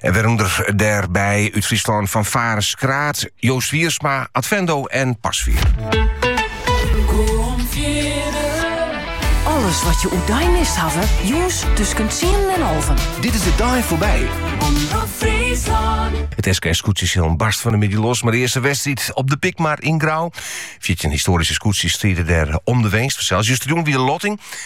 En werûnder dêrby út Fryslân fanfare Skraard, Joost Wiersma, Advendo en Pasveer. Alles wat je oer dei mist hawwe, jûns tusken tsienen en alven. Dit is De Dei Foarby. It SKS-skûtsjesilen barst fan 'e middei los mei de earste wedstriid op de Pikmar yn Grou. Fjirtjin histoaryske skûtsjes stride dêr om de winst. Justerjûn wie de lotting.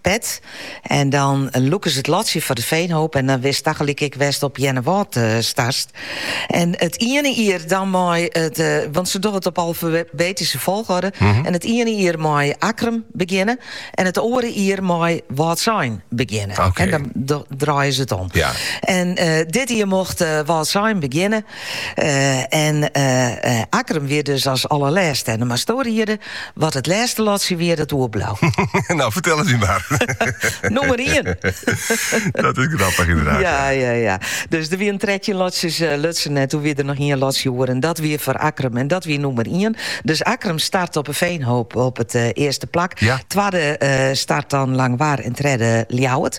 Pet. En dan lûke se it lotsje foar de Feanhoop en dan wist tagelyk ek wêr'tst op Earnewâld startst. En it iene jier dan mei it, want se dogge it op alfabetyske folgorde, en it iene jier mei Akkrum begjinne en it oare jier mei Wâldsein begjinne. En dan draaie se it om. En dit jier mocht Wâldsein begjinne. En Akkrum wie dus as allerlêste en dan meist do riede, wat it lêste lotsje wie, dat oerbleau. No, fertel it my mar. Nummer ien. dat is grappig inderdaad. Ja, ja, ja. Dus er wienen 13 lotsjes uh, lutsen en toen wie der noch ien lotsje oer en dat wie foar Akkrum en dat wie nummer 1. Dus Akkrum start op 'e Feanhoop op it eh, earste plak. Ja. Twadde eh, start dan Langwar en tredde Ljouwert.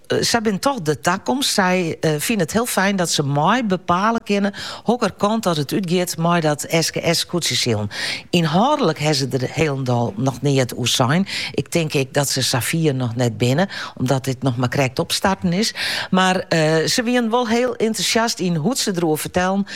Sy binne toch de takomst. Sy fine it hiel fijn dat se mei bepale kinne hokker kant dat it útgiet mei dat SKS-skûtsjesilen. Ynhâldlik ha se der hielendal noch neat oer sein. Ik tink ek dat se sa fier noch net binne, omdat dit noch mar krekt opstarten is. Mar se wiene wol hiel entûsjast yn hoe't se der oer fertellen.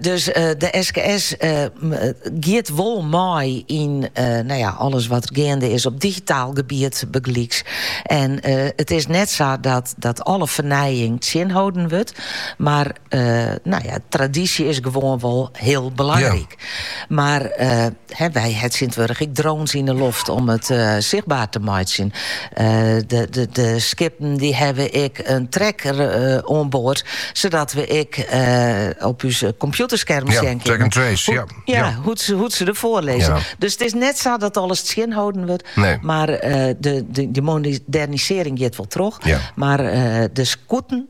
dus de SKS giet wol mei yn nou ja, alles wat er geande is op digitaal gebied begelyks. En it is net sa dat, dat alle fernijing tsjinholden wurdt, mar nou ja, tradisje is gewoan wol hiel belangryk. Mar wy ha tsjintwurdich ek drones yn 'e loft om it sichtber te meitsjen. De skippen dy hawwe ek in tracker oan board, sadat we ek op ús kompjûterskermen sjen kinne. Ja, track and trace, ja. Ja, hoe't se derfoar lizze. Dus it is net sa dat alles tsjinholden wurdt. Nee. Mar de modernisearring giet wol troch. Ja. Mar de skûten.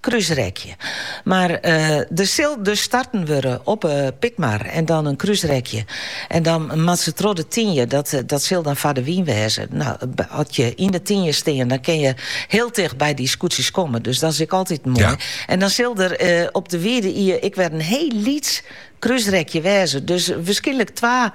Krúsrekje. Mar der sil dus starten wurde op 'e Pikmar en dan in krúsrekje. En dan moat se troch de Tynje, dat dat sil dan foar de wyn wêze. No, as je yn de Tynje stean, dan kin je hiel ticht by dy skûtsjes komme. Dus dat is ek altyd moai. En dan sil der op de Wide Ie ek wer in hiel lyts krúsrekje wêze. Dus wierskynlik twa.